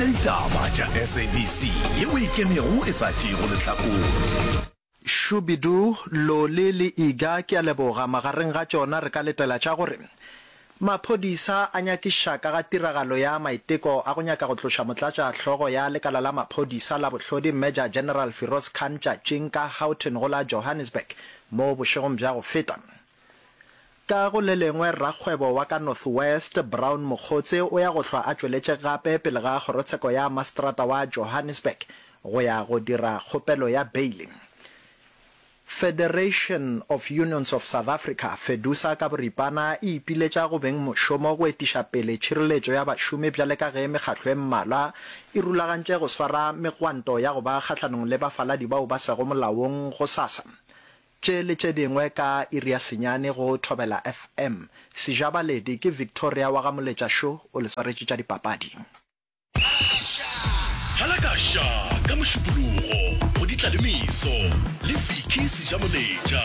Ditaba tša SABC ye o e kemego e sa tšeego lehlakore. Shubidoo, Loli le Iga ke a leboga. Magareng ga tšona re ka letela tša gore maphodisa a nyakiša ka ga tiragalo ya maiteko a go nyaka go tloša motlatša hlogo ya lekala la maphodisa la bohlodi Major General Firoz Khan tšatšing ka Houghton go la Johannesburg mo bošegong bja go feta. Ka go le lengwe, rakgwebo wa ka North West, Brown Mokgotse, o ya go hlwa a tšweletše gape pele ga Kgorotsheko ya Maseterata wa Johannesburg go ya go dira kgopelo ya beile. Federation of Unions of South Africa, Fedusa ka boripana, e ipiletša go beng mošomo go etiša pele tšhireletšo ya bašomi bjale ka ge mekgatlo e mmalwa e rulagantše go swara megwanto ya go ba kgahlanong le bafaladi bao ba sego molaong gosasa, Tše le tše dingwe ka iri ya senyane go Thobela FM. Sejabaledi ke Victoria wa ga Moletša Šo o le swaretše tša dipapadi. Halakasha ka Mošupologo go Ditlalemeso le Vicky Sejamoletša.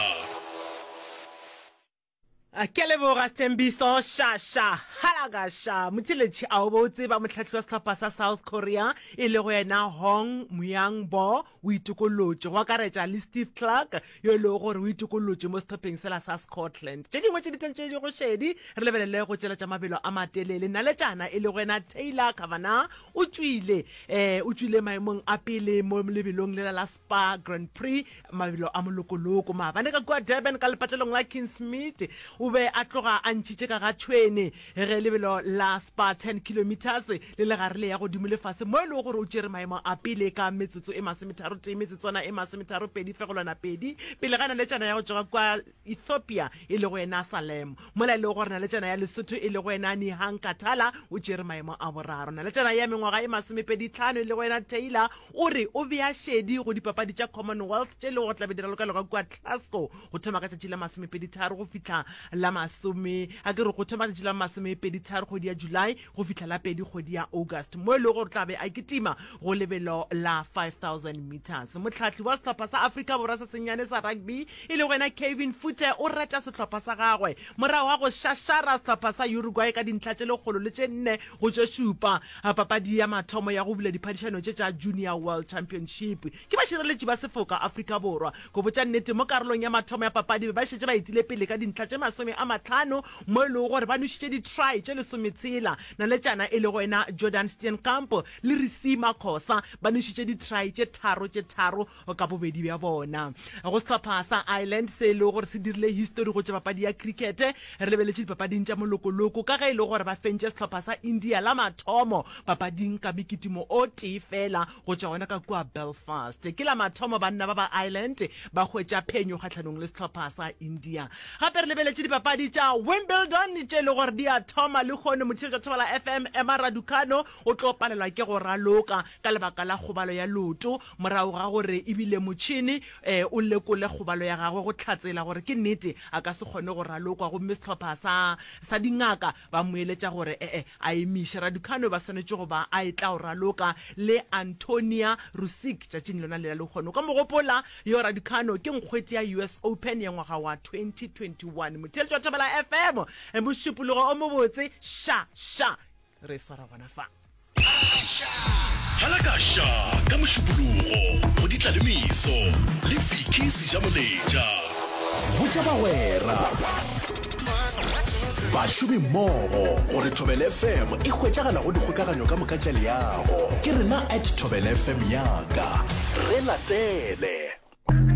A ke leboga Sthembiso Shasha Halagasha Motheletši a o be o tseba mohlahlwi wa sehlopha sa South Korea e lego yena Hong Muyang-bo o itokolotše go akaretša le Steve Clark yo e lego gore o itokolotše mo sehlopheng sela sa Scotland. Tše dingwe tše ditheng tše di go šedi re lebelele go tšeletša mabelo a matelele. Naletšana e lego yena Taylor Kavanagh o tšwile um o tšwile maemong a pele mo lebelong lela la ba Grand Prix, mabelo a molokoloko. Maabane ka kua Durban ka lepatlelong la Kingsmead, o be a tloga a ntšhitše ka ga thwene ge lebelo la Spa 10 kilometres le le gare le ya godimo le fase mo e lego gore o tšere maemo a pele ka metsotso e masometharotee metsotswana e masometharopedi-pedi pele ga naletšana ya go tšwa ka kua Ethiopia e lego yena Salem, mola e lego gore naletšana ya Lesotho e lego yena Nihang Katala o tšere maemo a boraro. Naletšana ya mengwaga e masomepedi-tlhano e lego yena Taylor o re o bea šedi go Dipapadi tša Commonwealth tše e lego gore tlabe di ralokalogwa kua Glasgow go thoma ka tšatši la masomepedi-tharo go fihla la masome, a ke re go thoma ka tšatši la masomepedi-tharo kgwedi ya July, go fihla la pedi kgwedi ya August mo e lego gore tla be a kitima go lebelo la 5000 metres. Mohlahli wa sehlopha sa Afrika Borwa se sennyane sa rugby e lego yena Kevin Fute o reta sehlopha sa gagwe morago ga go šašara sehlopha sa Uruguay ka dintlha tše lekgolo le tše nne go tše šupa papadi ya mathomo ya go bula diphadišano tše tša Junior World Championship. Ke bašireletši ba sefoka Afrika Borwa. Go botša nnete, mo karolong ya mathomo ya papadi be ba šetše ba etile pele ka dintlha tše masome a matlhano mo e lego gore ba nwešitše di-try tše lesometshela. Naletšana e lego yena Jordan Steenkamp le Risima Khosa ba nwešitše di-try tše tharo tše tharo ka bobedi bja bona. Go sehlopha sa Ireland se e lego gore se dirile histori go tša papadi ya krikete, re lebeletše dipapading tša molokoloko ka ge e le gore ba fentše sehlopha sa India la mathomo papading ka mekitimo o tee feela go tšwa gona ka kua Belfast. Ke la mathomo banna ba ba Ireland ba hwetša phenyo kgahlanong le sehlopha sa India. Gape re lebeletše dipapadi tša Wimbledon tše e le gore di a thoma, lehono motšhiri tša Thobela FM Emma Raducanu o tlo palelwa ke go raloka ka lebaka la kgobalo ya leoto morago ga gore ebile motšhini um o lekole kgobalo ya gagwe go hlatsela gore ke nnete a ka se kgone go ralokwa gomme sehlopha sa sa dingaka Ba mo eletša gore e-e a emiše. Raducanu ba swanetše go ba a etla go raloka le Antonia Rusic tšatšing lona lela lehono. O ka mo gopola yo Raducanu ke nkgwete ya US Open ya ngwaga wa 2021. Motheeletši wa Thobela FM, mošupologo o mobotse. Xa, xa, re swara gona fa. Halakasha ka Mošupologo go di tla le meso le Vicky Sejamoletša. Botša bagwera, bašomi mmogo gore Thobela FM e hwetšagala go dikgokaganyo ka moka tša leago. Ke rena at Thobela FM yaka. Re latele.